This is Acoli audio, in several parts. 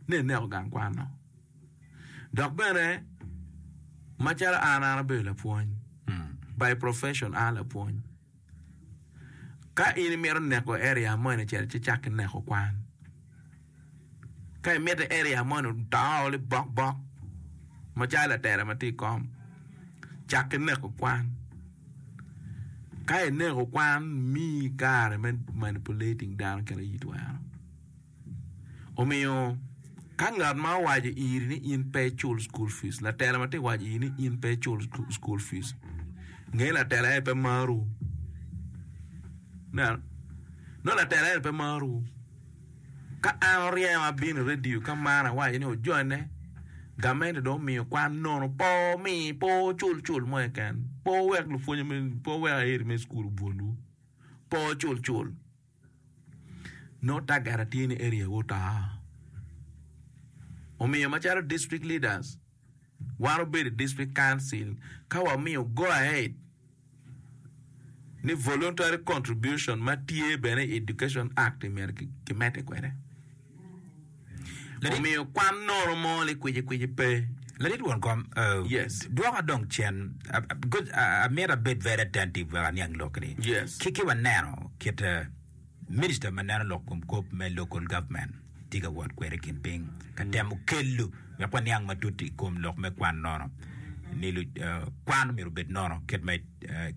ni eneko gang kwanno. Dok bene macalo an an abedo lapwony, by profession an lapwony. Ka in imito neko area mo eni cel ci icak ki neko kwan. Ka imito area mo ni odoo ni bok bok macalo latela ma tye i kom cak ki neko kwan. Ka ineko kwan miyi kare me manipulating dano kit ma in itwero. Omiyo, ka ngat ma owaco iri ni in pe icul cukul fic, latela ma tye ka waco iri ni in pe icul cukul fic, nge ni latela eni pe marowu. Ineno? Nongo latela eni pe marowu. Ka an oryengo abino i redio ka man awaco ni ojone, gamente dong omiyo kwan nono, pe omi, pe ocul cul mo keken, pe owek lupwonye me, pe owek aeri me cukul obwolwu, pe ocul cul. Nongo tagata tye ni area wu oto. Omiyo macalo district leaders wan obedo i district council ka wamiyo go ahead ni voluntary contribution ma tye bene i education act myero kimedde kwede. omiyo kwan noro mo ni kwicikwici pe. Ladit won kom, uh, Yes. dwoka dong cen, uh, uh, because uh, amyero abed very attentive wek aniang lok ni. Yes. Ki ki waneno kit uh, minister ma neno lok kom kop me local government tye ka wot kwede kin piny ka temo kelo wek waniang matut i kom lok me kwan nono ni lu, uh, kwan myero obed nono kit ma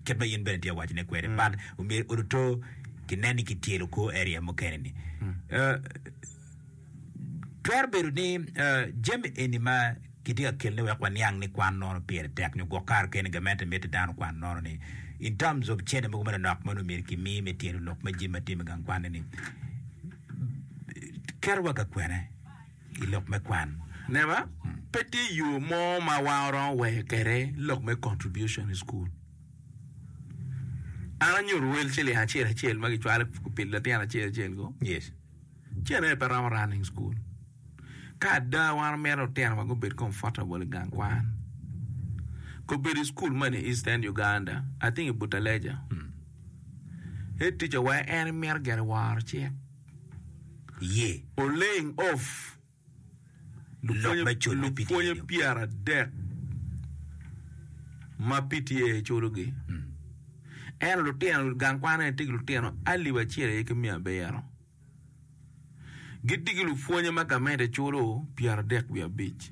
kit ma in bene itye awacone kwede but omyero oruto kinen ni kityelo kwo area mukene ni Eh, twero bedo ni eh, jami eni ma kitye ka kelne wek waniang ni kwan nono pire tek nyo gwok kare kene gamente mitte dano kwan nono ni in terms of cene mogo manonok ma omyero kimi me tyelo lok ma jami ma tye me gang kwanne ni keto wa ka kwene i lok me kwan. Neba, pe tye yo mo ma wan waromo weyo kwede lok me contribution i cukul. An anyuto wel ciling acel acel ma kicwalo pi litino acel acel go. Yes. Ceng aye pe romo running school. Ka ada wan wamito lutino wa gubed comfortable i gang kwan. Kobedo i cukul man i Eastern Uganda, I think i Butaleja. Head teacher wa en mito gire woro cik. Iye. Olaying of lok me cul me PTA Lupwonye pyeradek ma PTA culogi, ento lutino gang kwan eni tye ki lutino alip acel aye ki miya abiro. Gitye ki lupwonye ma gamente culo pyeradek wiye abic.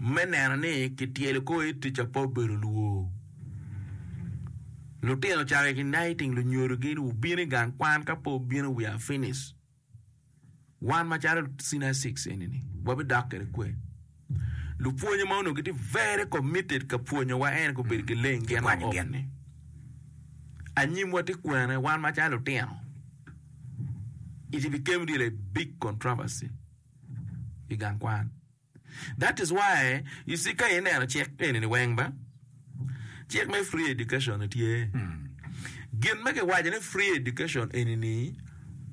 me neno ni kityelo kor i tic ape obedo lwor. Lutino ocako i Knighting lunyodo gi ni wubin i gang kwan ka pe wubino we are finished. Wan macalo senior six eni ni wabidok kwede kwer. Lupwonye ma onongo gitye very committed ka pwonyowa en gubedo ki leng gin ma Kikwanyo gin. ok-ni. Anyimwa tye kwene wan macalo lutino. It became really a big controversy. i gang kwan. That is why you see ka ineno cik eni ni weng ba, cik me free education ni tye. Gin ma kiwaco ni free education eni ni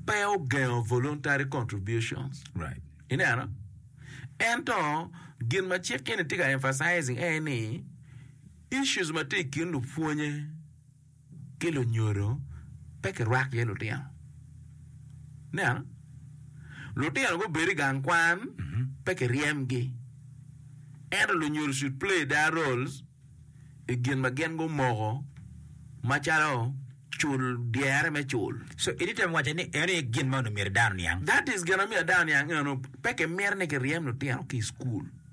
pe ogengo voluntary contributions. Right. Ineno? Ento gin ma cik eni tye ka emphasizing en ni issues ma tye i kin lupwonye ki lunyodo pe kirwak iye lutino. Nen, lutino gubedo i gang kwan pe kiryemgi, ento lunyodo should play their roles i gin ma gin gumoko macalo cul dyere me cul. So in itemo waco ni eno aye gin ma onongo myero dano niang? That is gin ma myero dano niang eno, pe kimito ni kiryem lutino ki i cukul.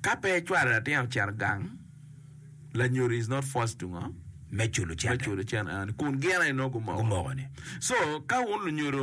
Ka pe icwalo latin ocito gang, lanyodo is not forced to ngo? Me culo cente. Me culo cente eni kun gin aye nongo gumoko. Gumoko-ni. So, ka wun lunyodo